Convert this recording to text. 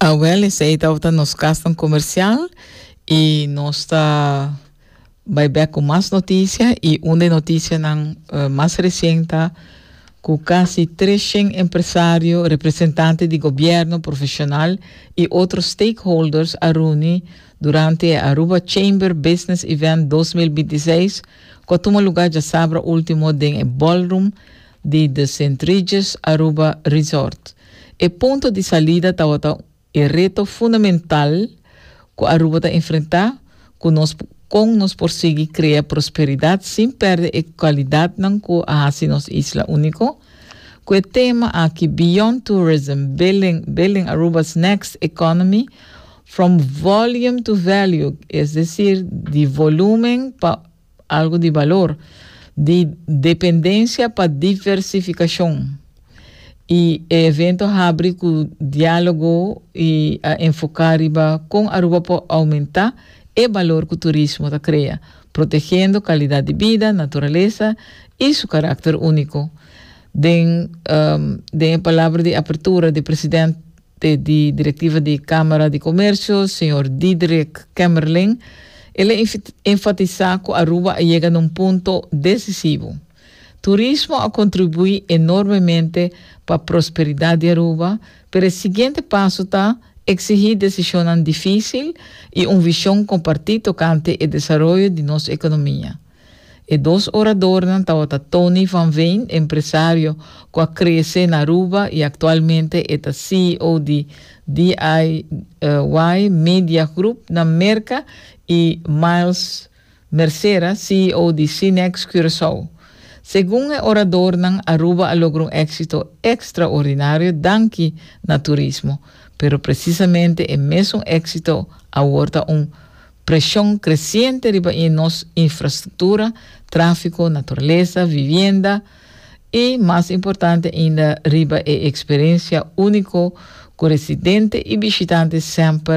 Awel, esei tabata nos kasnan komersial i nos ta bai bèk ku mas notisia i un den notisianan mas resien ta ku kasi tres shen empresario, representante di gobièrnu, profeshonal i otro stakeholders a runi durante e Aruba Chamber Business Event dos mil binti seis ku a tuma lugá djasabra último den e ballroom di The Saint Regis Aruba Resort. E punto di salida tabata e reto fundamental cu Aruba ta enfrenta cu nos con nos por sigui crea prosperidad sin perde e cualidadnan cu a haci nos isla unico. Cu e tema aki Beyond Tourism, Building Building Aruba's Next Economy, From Volume to Value, es decir, di volumen pa Algu di balor, di dependensia pa diversificacion, y e evento habri cu dialogo y a enfoca riba con Aruba por aumenta e balor cu turismo ta crea, protegendo calidad di bida, naturalesa y su caracter unico. Den den e palabra di apertura di President. Te di Directiva di Camara di Comercio, señor Diederik Kemmerling, el a enfatisa cu Aruba a yega na un punto decisivo. Turismo a contribui enormemente pa prosperidad di Aruba, pero e siguiente paso ta exigi decisionnan dificil y un vision comparti tocante e desaroyo di nos economia. E dos oradornan tabata Tony van Veen, empresario cu a crece na Aruba y actualmente e ta CEO di DIY Media Groep na Merca y Miles Mercera, CEO di Cinex Curaçao. Segun e oradornan, Aruba a logra un exito extraordinario danki na turismo, pero precisamente e mesun exito awor ta un. Preshon kresiente riba i nos infrastruktura, tráfiko, naturalesa, vivienda i, mas importante ainda, riba e eksperensia úniko ku residente i bishitante semper